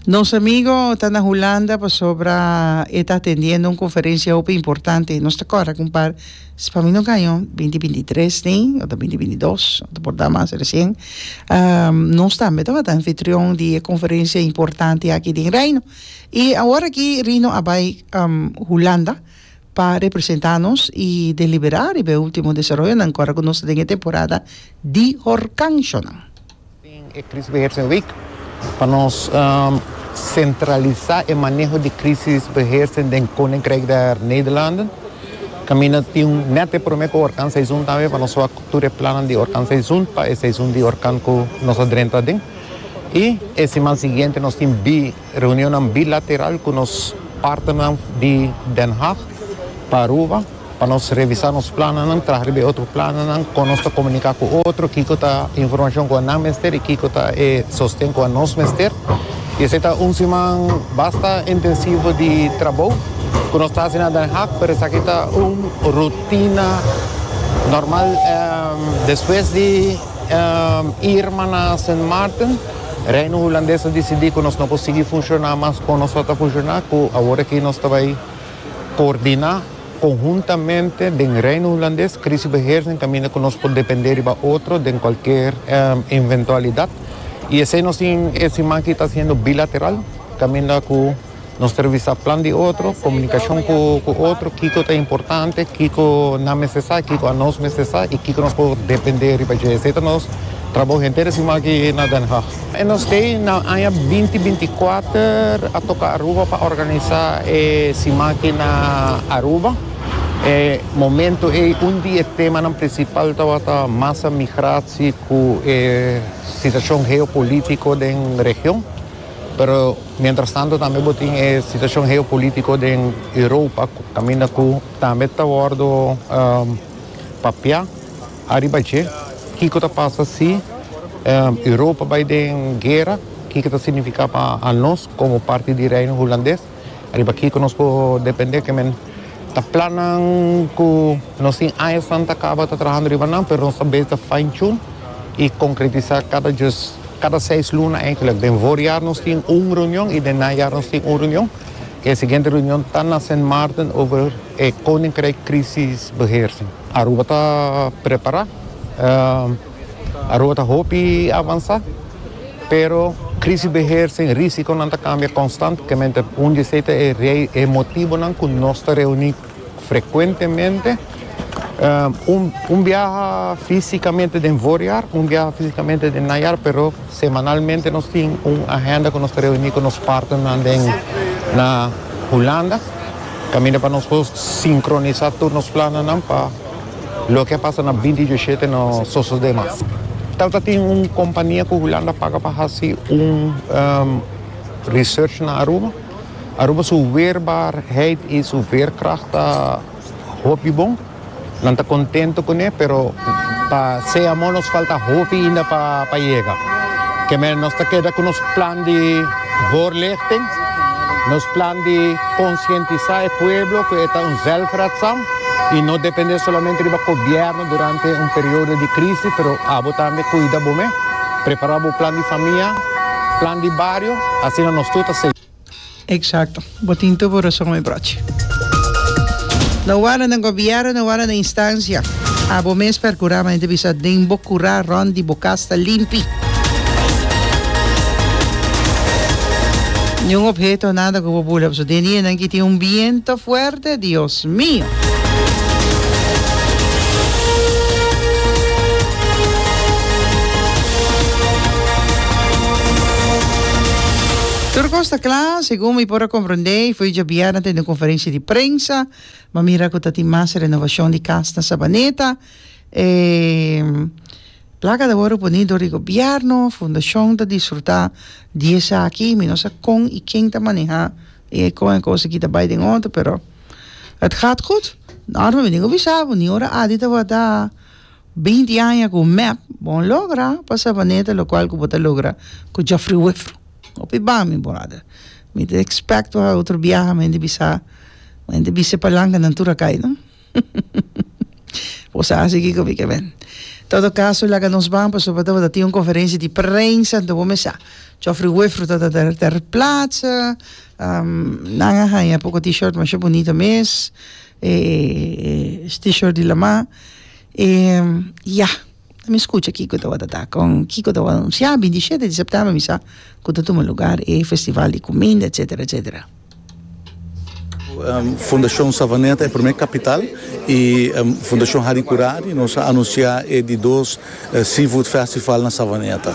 Nos amigo ta na Hulanda pasobra e ta atendiendo un conferencia hopi importante. Nos ta corre con par, si pa mi no gaño, 2023 ni, o ta 2022, o ta por da mas recien. Um, nos tambe ta wak anfitrion di e conferencia importante aki den Reino. Y awor aki Rino a bai, um, Hulanda pa representa nos y delibera riba e ultimo desaroyonan cu a corre cu nos den e temporada di horcanshonan. Den e Krisisbeheersingsweek pa nos sentralisá e maneho di krisisbeheersing den Koninkrijk der Nederlanden. Kaminda tin un nèt e promé ku orkanseizoen tambe pa nos wak tur e plannan di orkanseizoen pa e seizoen di orkan ku nos a drenta aden. I e siman siguiente nos tin bi. Reunionnan bilateral cu nos partnernan di Den Haag pa Aruba pa nos revisa nos plannan, traha riba e otro plannan, con nos ta comunica cu otro, kico ta e informacion cu nan mester y kico ta e sosten cu nos mester. Y esey ta un siman basta intensivo di trabou cu nos ta haci na Den Haag, pero esaki ta un rutina normal. Despues di Irma na Sint Maarten. Reino Hulandes a disidí ku nos no por sigui funshoná mas kon nos lo ta funshoná ku awor aki nos ta bai koordiná konhuntamente den Reino Hulandes krisibeheersing kaminda ku nos por dependé riba otro den kualker inventualidat i esei nos tin e siman aki ta hasiendo bilateral kaminda ku Nos ta revisa plan di otro, komunikashon ku otro, kiko ta importante, kiko nan mester sa, kiko anos mester sa i kiko nos por dependé riba dje. Esei ta nos trabou henter e siman aki na Den Haag. E nos stay na aña binti binti kuater a toka Aruba pa organisá e siman aki na Aruba. E momento ei un di e temanan prinsipal tabata masa migratie ku e situashon geopolítiko den region. Pero mientras tanto tambe bo tin e situacion geopolitico den Europa caminda cu tambe ta wordo papia ariba dje. Kico ta pasa si Europa bay den guera? Kico ta significa pa nos como parti di Reino Hulandes? Riba kiko nos por depende ke men ta plannan ku nos tin aña santa kaba ta trahando riba nan, pero nos ta beta fine tune i konkretisá kada djos, kada seis luna enkelek. Den voorjaar nos tin un reunion i den najaar nos tin un reunion. E siguiente reunion ta na Sint Maarten over e Koninkrijk Krisisbeheersing. Aruba ta prepará. Aruba ta hopi avansá, pero Krisisbeheer sin Risikonan ta kambia konstantemente. Un di esei ta e motibonan ku nos ta reuní frekuentemente, un biaha físikamente den voorjaar, un biaha físikamente den najaar, pero semanalmente nos tin un agenda ku nos ta reuní ku nos partnernan den na Hulanda kaminda pa nos por sinkronisá tur nos plannan pa Loke a pasa na binti diosete no sosode mas. Tata tin un kompania ku Hulanda paga pa hasi un research na Aruba. Aruba su weerbaarheid i su veerkracht ta hopi bon. Nan ta kontento kuné, pero pa se amo nos falta hopi inda pa yega. Kemey nos ta keda ku nos plan di. Voorlichting, Nos plan di konsientisá e pueblo ku e ta un zelfredzaam i no dependé solamente riba gobièrnu durante un periodo di krisi pero abo tambe kuida bo mes. Prepará bo plan di famia, plan di bario, asina nos tur ta segú. Eksakto. Bo tin tur bo rason mi brochi. No wara na gobierno no wara na instancia abo mes percura mante bisa den bo cura rond di bo cas ta limpi ni un obheto o nada cu bo bula paso den di enan ki tin un biento fuerte Dios mio. Tur cos ta cla. Segun mi por a komprendé i foi djabièrnè den un konferensia di prensa, m'a mira ku ta tin mas renovashon di kas na Sabaneta. E plaka ta wòrdu puní dor di gobièrnu, fundashon ta disfrutá di esaki. Mi no sa kon i ken ta manehá e kon e kos aki ta bai den òrdu, pero het gaat goed. Nòrman mi a bin wisá bo, ni ora Adi tabata. Beinti aña ku mep, bon logra pa Savaneta lokual ku bo ta logra ku Jofri Wefru. Hopi ban, mi brother. Mi ta expect pa otro biaha men di bisa, men di bisa e palankanan tur a kai, no? Bo sa hasi kiko mi ke men. Todo kaso, laga nos ban pasobra bo ta tin un konferensia di prensa anto bo mes sa. Jofri Wefru ta ta ter platsa, nan a haña poko T-shirt masha bunito mes, e T-shirt di Lama. E ya, ta mi scucha kico tabata ta con kico ta wor anuncia, binti shete di september mi sa cu ta tuma lugar e festival di cuminda etcetera etcetera. Fundacion Savaneta e primer capital y Fundacion Harry Curari nos a anuncia e di dos seafood festival na Savaneta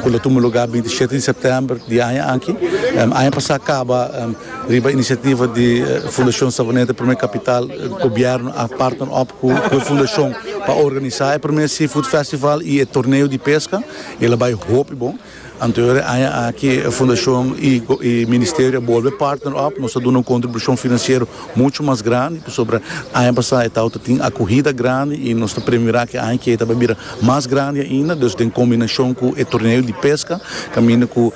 cu lo tuma lugar binti shete di september di aña aki, aña pasa caba. Riba inisiativa di Fundashon Savaneta Prome Kapital, gobièrnu a partner op ku e fundashon pa organisá e prome Seafood Festival i e torneo di peska. E lo bai hopi bon. Anterior e aña aki e fundashon i e ministerio a bolbe partner op. Nos ta duna un kontribushon finansiero muchu mas grandi pasobra aña pasá e tabata tin akuhida grandi i nos ta premirá ku e aña ke ta bai bira mas grandi ainda. Dus den kombinashon ku e torneo di peska kaminda ku.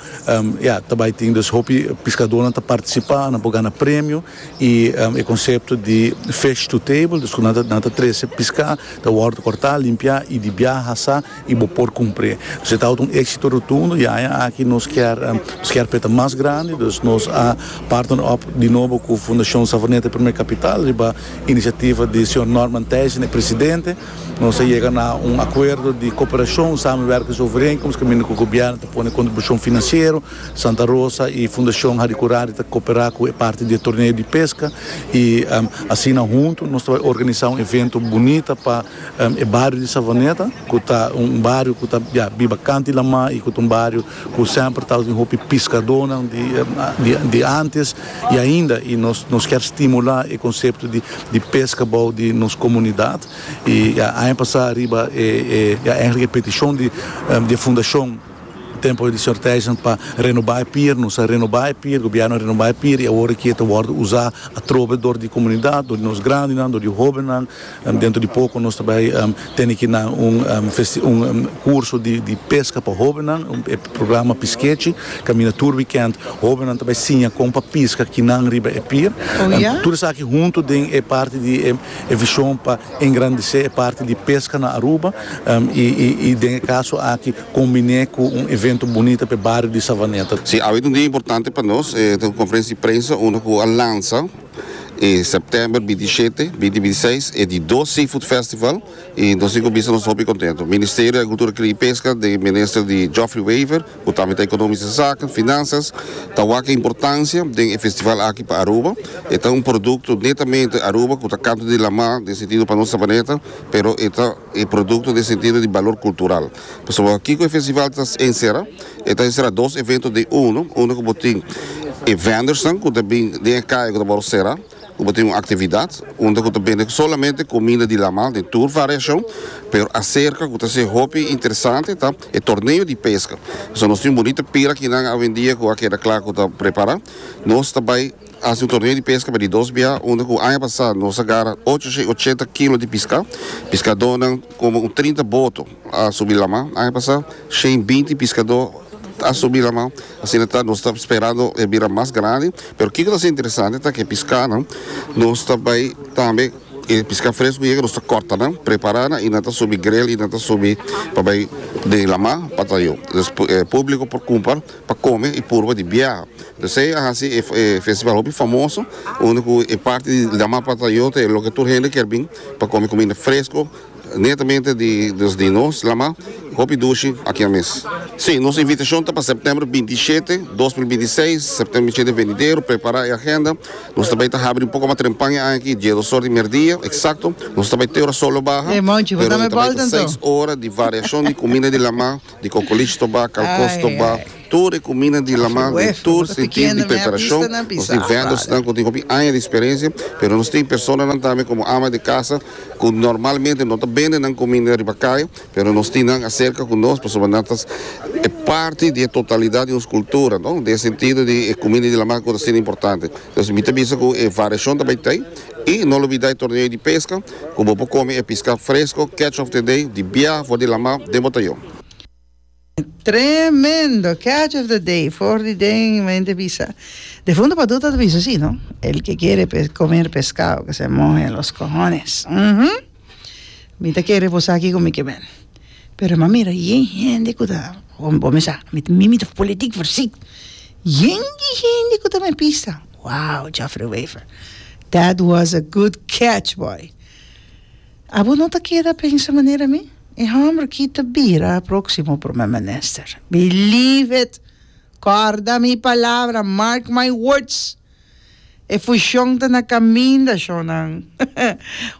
Ya, ta bai tin dus hopi piskadónan ta partisipa, nan por gana premio i e konsepto di fish to table, dus ku nan ta nan ta trese piská, ta wòrdu kòrtá, limpiá i di biaha asá i bo por kumpr'é. Dus e tabata un éksito rotundo i aña aki nos kier nos kier p'e ta mas grandi, dus nos a partner op di nobo ku Fundashon Savoneta Primer Kapital riba inisiativa di señor Norman Thijssen, e presidente. Nos a yega na un akuerdo di koperashon, samenwerkings overeenkomst, kaminda ku gobièrnu ta pone kontribushon finansiero. Santa Rosa i Fundashon Hari Kurari ta koperá ku e parti di e torneo di peska i asina huntu nos ta bai organisá un evento bunita pa e bario di Savaneta ku ta un bario ku ta biba kanti laman i ku ta un bario Ku semper tabata tin hopi piskadónan di ántes i ainda i nos kier stimulá e konsepto di peska bou di nos komunidat i aña pasá riba e èigelik e petishon di e fundashon tempu di señor Thijssen pa renobá e pier nos a renobá e pier gobièrnu a renobá e pier i awor e kier ta wòrdu uzá atrobe dor di komunidat dor di nos grandinan dor di hóbennan. Dentro di poco nos ta bay tene ki nan un un curso di pesca pa hobennan, e programa Piskechi, caminda tur weekend hobennan ta bay siña con pa pisca kinan riba e pier. Tur esaki hunto den e parti di e vision pa engrandece e parti di pesca na Aruba y y den e caso aki combine cu un evento bunita pa e bario di Savaneta. Si, awe ta un dia importante pa nos, e ta un conferencia di prensa unda cu a lansa. E September binti shete, binti binti seis e di dos Seafood Festival y nos tin cu bisa nos ta hopi contento. Ministerio di Agricultura, Cria y Pesca den Minister di Geoffrey Wever cu tambe ta Economisch di Zaken, Finanzas, ta wak e importancia den e festival aki pa Aruba. E ta un producto netamente Aruba cu ta canto di lama den sentido pa nos Sabaneta pero e ta e producto den sentido di balor cultural. Pasobra kiko e festival ta ensera? E ta ensera dos evento den uno, uno ku bo tin e vendornan ku ta bin den e kaya ku ta por sera, ku bo tin un aktividat unda ku ta bende solamente kuminda di laman den tur variashon, pero aserka ku ta ser hopi interesante ta e torneo di peska. Pasobra nos tin un bunita pira kinan awendia ku a keda kla ku ta prepara, nos ta bai. Hasi un torneo di peska pa di dos biaha unda ku aña pasá nos a gara ocho shei ochenta kilo di piská. Piskadónan komo un trinta boto a subi lamá aña pasá. Shei binti piskadó a subi lamá. Asina ta nos ta sperando e bira mas grandi. Pero kiko ta hasi interesante ta ku e piskánan nos ta bai tambe e piská fresku yega nos ta kòrta nan, prepará nan i nan ta subi grel i nan ta subi pa bai den lamá pa ta yu. Públiko por kumpa. pa kome y purba di biaha. Entonces esei a haci e festival hopi famoso unda cu e parti di la mar plata yo ta e loke tur hende kier bin pa kome cuminda fresco netamente di nos di nos la mar y hopi dushi akia mes. Si, nos invitacion ta pa septiember binti i shete, dos mil binti i seis, septiember binti i shete venidero, prepara e agenda, nos ta bay ta habri un poco mas trempan e aña aki, dies osor di merdia exacto, nos ta bay te ora sol lo baha, pero ta bay ta seis ora di variacion di cuminda di la mar. di kokolich to ba, kalkos to ba, tur e kumina di laman den tur sentir di preparashon. Nos tin vendòrsnan ku tin hopi aña di eksperensia, pero nos tin personanan tambe komo ama di kasa ku normalmente no ta bende nan kumina riba kaya, pero nos tin nan aserka ku nos pasobra nan ta e parti di e totalidat di nos kultura, no? Den e sentido di e kumina di laman ku ta hasinan importante. Entonces mi ta bisa ku e variashon ta bai ta ei. I no lo bida e torneo di pesca cu bo por come e pisca fresco catch of the day di biaha for di lamar den botayon. Tremendo catch of the day for di den mi mente bisa de fundo pa duta ta bisa si no el que kere comer pescado que se mohe los cohones uhmm mi ta kere reposa aki cu mi kemen pero m'a mira yen hende cu ta bo mi sa mi mi ta politic for si yen di hende cu ta me pisa Wow Jeffrey Wever that was a good catch boy abo no ta keda pensa manera mi e homber aki ta bira proximo prome minister believe it corda mi palabra mark my words e fushon ta na caminda shonnan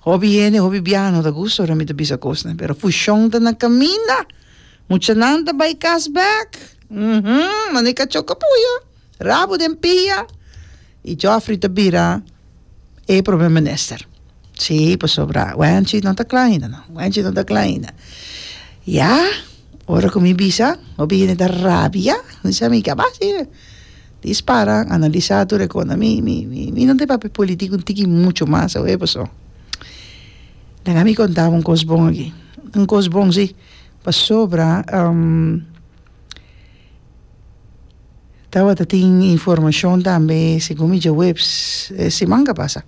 hopi hende hopi biaha no ta gusta ora mi ta bisa cosnan pero fushon ta na caminda muchanan ta bay cas back uhmm mano e cachoca puya. Rabo den pia y Geoffrey ta bira e promer minister si pasobra wenchi no ta cla ainda no wenchi no ta cla ainda ya ora cu mi bisa hopi hende ta rabia mi sa mi ka ba si dis para analisa tur e cona mi mi mi no tin papia politico un tiki mucho mas sa we paso deja mi conta bo un cos bon aki un cos bon si pasobra. Tabata tin informacion tambe segun mi dje webs e siman ka pasa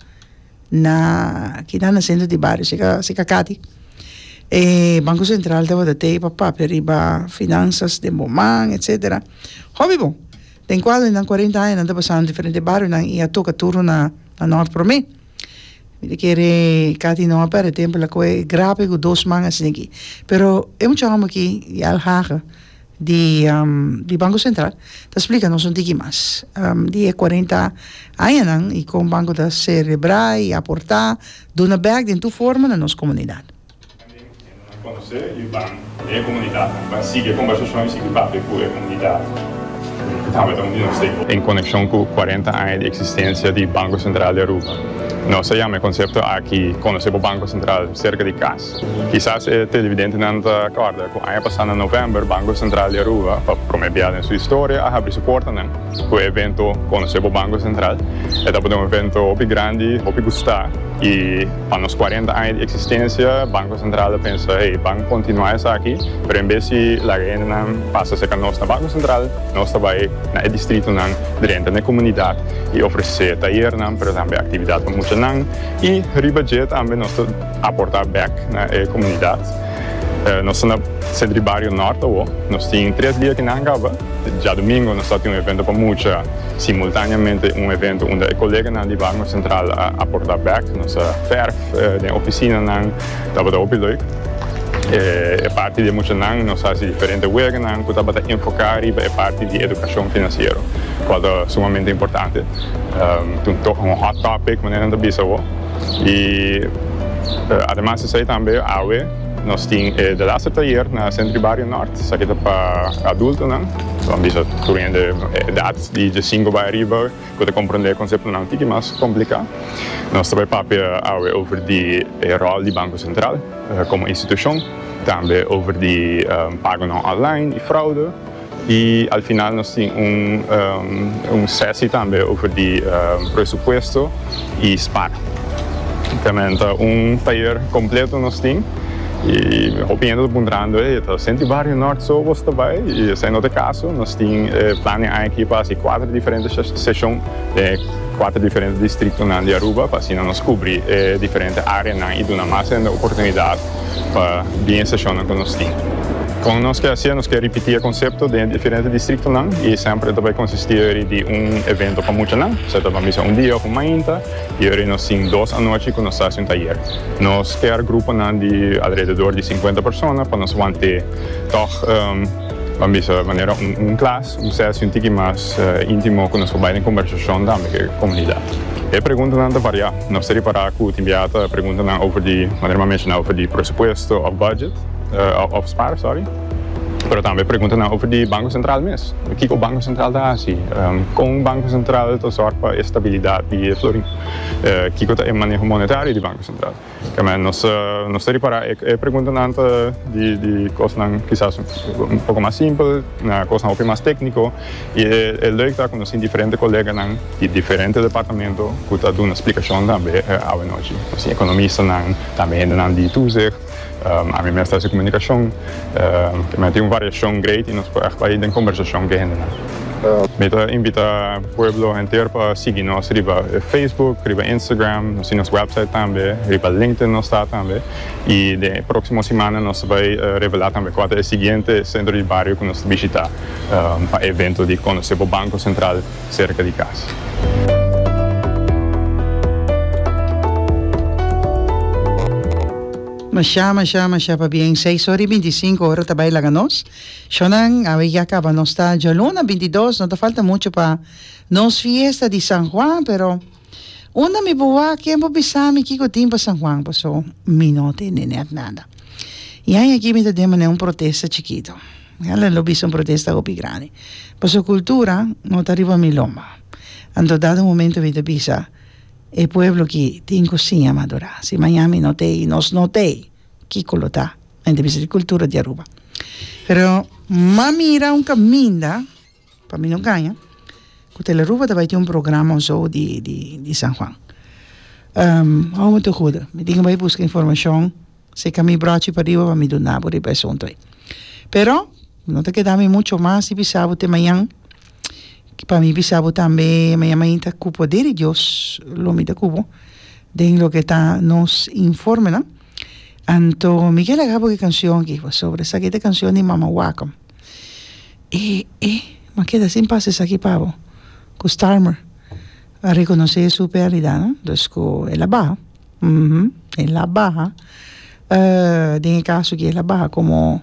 na kina na centro di bario si ka si ka kati e banco central tabata tei pa papia riba finanzas den bo man etcetera hopi bon den cual nan cuarenta aña nan ta pasanan diferente barionan y a toca turno na na nort prome. Mi ta kere Cathy no a perde tempo lakoe e grape ku dos man a sigi pero e mucha homber aki di Al Haga di Banco Central ta splika nos un tiki mas di e cuarenta añanan i kon banco ta serebra i aporta duna bek den tur forma na nos komunidat. En konekshon ku kuarenta aña di eksistensia di Banko Sentral di Aruba, nos a yama e konsepto aki Konosé bo Banko Sentral serka di kas. Kisas e televidentenan ta kòrda ku aña pasá na novèmber Banko Sentral di Aruba, pa promé bia den su historia, a habri su portanan ku e evento Konosé bo Banko Sentral. E tabatin un evento hopi grandi, hopi gustá i. Pa nos cuarenta aña di existencia Banco Central a pensa hey ban continua esaki pero en bes di laga hendenan pasa cerca nos na Banco Central nos ta bay na e distritonan drenta n'e comunidad y ofrece tayernan pero tambe actividad pa muchanan y riba dje tambe nos ta aporta bek na e comunidad. Nos ta na Centro di Bario Norte awo nos tin tres dia kinan caba djadomingo nos ta tin un evento pa mucha. Simultaneamente un evento unda e koleganan di Barnum Centraal a aporta bek, nos a ferf den oficinanan, tabata hopi leuk. E parti di e muchanan nos hasi diferente weganan cu tabata enfoca riba e parti di educacion financiero, cual ta sumamente importante. Un hot topic manera nan ta bisa awo. Y ademas esey tambe awe nos tin e de laster tayer na Centro di Barrio Nort, esaki ta pa adultonan. Bo a bisa tur hende edat di djasinku bai ariba ku ta komprondé e konseptonan un tiki mas kompliká. Nos ta bai papia awe over di e ròl di Banko Sentral komo institushon, tambe over di pagonan online i fraude, i al final nos tin un sesi tambe over di presupuesto i spar. Te menta un tayer kompleto nos tin. Y hopi hende ta puntrando, ey, ta senti Barrio Norte so bos ta bay? Y esey no ta e caso, nos tin e plan den añaki pa haci cuater diferente session den e cuater diferente distritonan di Aruba pa asina nos cubri e diferente areanan y duna mas hende oportunidad pa bin e sesionnan cu nos tin. Con nos ke haci e? Nos ke ripiti e concepto den e diferente distritonan y semper e ta bay consisti eri di un evento pa muchanan, esey ta bay bisa un dia of un mainta, Yori nos tin dos anochi ku nos ta hasi un tayer. Nos kèr gruponan di alrededor di sinkuenta persona pa nos want'é tòg, ban bisa manera un klas, un sèsi un tiki mas íntimo ku nos por bai den kombersashon tambe ku e komunidat. E preguntanan ta variá. Nos ta ripará ku tin biaha ta preguntanan over di, manera mi a menshoná, over di presupuesto òf bùdjèt, òf spar, sòri. Pero tambe pregunta nan over di Banco Central mes. Kiko Banco Central ta hasi? Kon Banco Central ta zorg pa e stabilidad di e florin? Kiko ta e maneho monetario di Banco Central? Kemey, nos nos ta ripara e preguntanan ta di kosnan kisas un poko mas simpel na kosnan hopi mas tekniko i e leuk ta ku nos tin diferente koleganan di diferente departamento ku ta duna splikashon tambe awanochi. Nos tin ekonomistanan, tambe hendenan di toezicht. Ami mes ta hasi komunikashon ku mi a tin un variashon great i nos por ègt bai den kombersashon ku e hendenan. Mi ta invitá pueblo henter pa sigui nos riba Facebook, riba Instagram, nos tin nos wèpsait tambe, riba LinkedIn nos ta tambe i den e próksimo simana nos ta bai revelá tambe kua ta e siguiente sentro di bario ku nos ta bishitá pa e evento di Konosé bo Banko Sentral. serka di kas. Mashá, mashá, mashá pabien. Seis ora i binti i sinku, ora ta bai laga nos. Shònan, awe ya kaba nos ta djòluna binti dos. No ta falta muchu pa nos fiesta di San Juan, pero. Unda mi por wak? Ken por bisa mi kiko tin pa San Juan? Paso mi no ta endener nada. I aña aki mi ta demané un protesta chikito. Ala lo bisa un protesta hopi grandi. Paso cultura no ta riba mi lomba. Anto dado momento mi ta bisa, e pueblo aki tin cu siña madura. Si maña mi no ta ei, nos no ta ei, kiko lo ta? Nan ta bisa di cultura di Aruba. Pero m'a mira un caminda. Pa mi no gaña ku Telearuba ta bai tin un programa o so di di di San Juan hou mi ta huda mi tin bai buska informashon si ka mi brochi pariba pa mi duna bo riba e asuntu ei pero no ta keda mi mucho mas di bisa bo te mañan pa mi bisa bo tambe mañan mainta ku poder di Dios lo mi ta ku bo den loke ta nos informenan anto mi ke laga bo e kanshon aki pasobra esaki ta e kanshon di Mama Wacom. E e ma keda sin pasa esaki pabo ku Starmer a rekonosé su perdida no dus ku el a baha uhmm el a baha den e kaso ki el a baha komo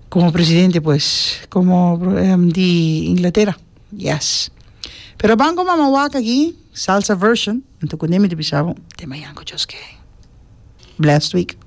komo presidente pues komo di Inglatera yes pero a banco mama wak aki salsa version anto kuné mi ta bisa bo tema yanko just kei blessed week.